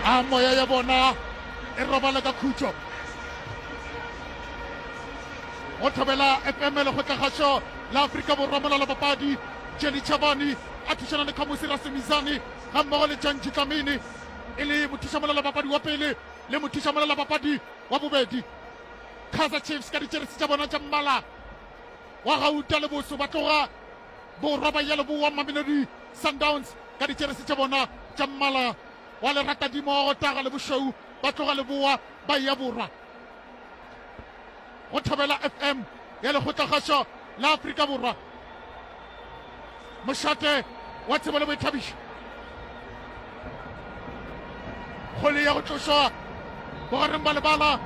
a moya ya bona e robala ka khutšo go thobela epemele go tlagasho la aforika borwa molala papadi jeni chabani a thušana le khamosi rasemizane ga mmogo le janji tlamini e le mothuša molala papadi wa pele le mothuša molala papadi wa bobedi kaizer chiefs ka ditšeresi tša bona tša mmala wa gauta le boso ba tloga Borwa ba Yeleboa Mamelodi Sundowns ka dijeresi tša bona tša mmala wa leratadimo wa go taga le bošweu ba tloga leboa ba eya borwa go thobela fm ya lekgotlakgašo la afrika borwa mošate wa tsebo le boithabišo kgole ya go tlošwa bogareng ba lebala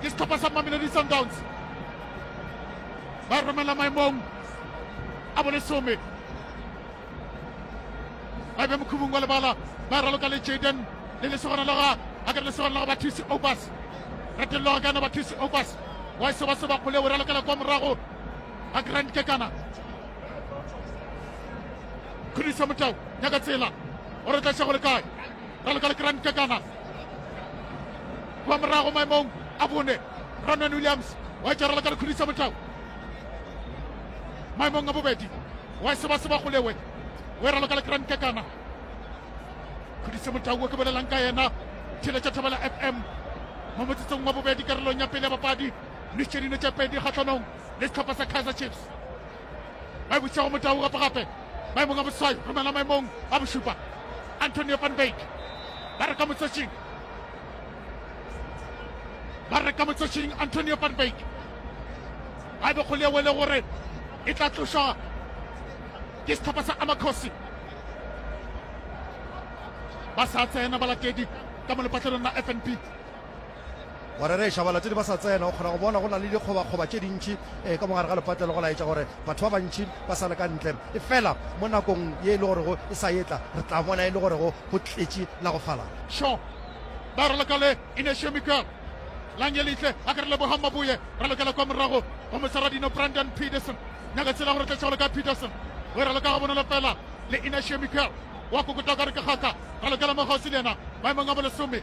ke setlhopha sa mamelodi sundowns ba romela maemong a bolesome ba be mokhubung wa lebala ba raloka le jaden le lesogana la ga a ka lesogana la ga bathusi obas retelelo ga kana bathusi obas wa e seba seba kgole o ralokela kwa morago a grand kekana khudiso motao nyaka tsela gore tla šego le kae ra loka le grand kakana kwa morago maemong a bone ronan williams wa etšara le ka lekhudisa motau maemong a bobedi wa sebaseba golewe o era loka le grand kakana khudise motau o ke bolelang ka yena theletša thabela fm mo motsetsong wa bobedi karolong ya pele ya bapadi le tšedino tša pedi kgatlhanong le setlhopha sa kaizer chiefs ba bušitšego motau gape gape maemong a boswai romela maemong a bošupa antonio van bake ba re ka motsotšing ba re ka motsotšing antonio van bake a be go le wele gore e tla tlošwa ke setlhopha sa amakgosi ba sa tsena balatedi ka mo lepatlelong la fnp Wa rereša, balatedi ba sa tsena. O kgona go bona go na le dikgobakgoba tše dintši ka mo gare ga lepatlelo, go laetša gore batho ba bantši ba sa le ka ntle. Efela mo nakong ye e le gorego e sa etla, re tla bona e le gorego go tletše la go falala. Sho! Ba re leka le Inesio Miguel. Langelihle a ke re Lebogang Maboye, ra lokela kwa morago go moseradino Brandon Peterson. Nyaka tsela go re tletša go leka Peterson. O e ra leka gabonolo fela le Inesio Miguel. Wa kokota o ka re ke kgaka. Ra lokela mo kgauswi le yena maemong a bolesome.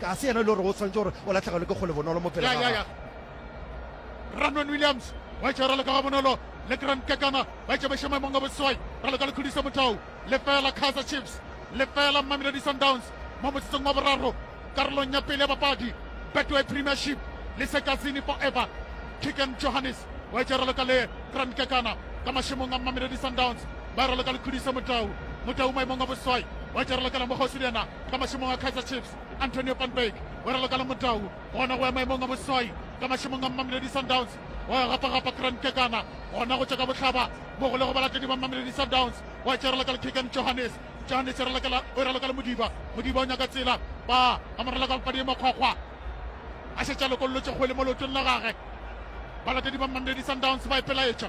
Ga se yena yo e lego gore o swanetše gore o lahlegelwe ke kgole bonolo mo pele ga gagwe. Ranwen Williams wa etša ralo ka ga bonolo le Grant Kekana ba etša bešo maemong a boswai ralo ka lekhodiso motau lefela Kaizer Chiefs lefela Mamelodi Sundowns mo motsotsong wa boraro karolong ya pele ya papadi Betway Premiership le Sekazini Forever Kicken Johannes wa etša ralo ka le Grant Kekana ka mašemong a Mamelodi Sundowns ba ralo ka lekhodiso motau motau maemong a boswai wa etša ralo ka la mokgosi le yena ka mašemong a kaizer chiefs antonio van berg o raloka le motau gona go ya maemong a boswai ka mašemong a mamelodi sundowns wa gapagapa grand kekana gona go tšwa ka bohlaba mo go le go balatedi ba mamelodi sundowns wa tša raloka le kigan johannes johannes o raloka le modiba modiba o nyaka tsela ba a mo raloka papadi e makgwakgwa a šetša lokololotše kgwele mo leotong la gage balatedi ba mamelodi sundowns ba e pelaetša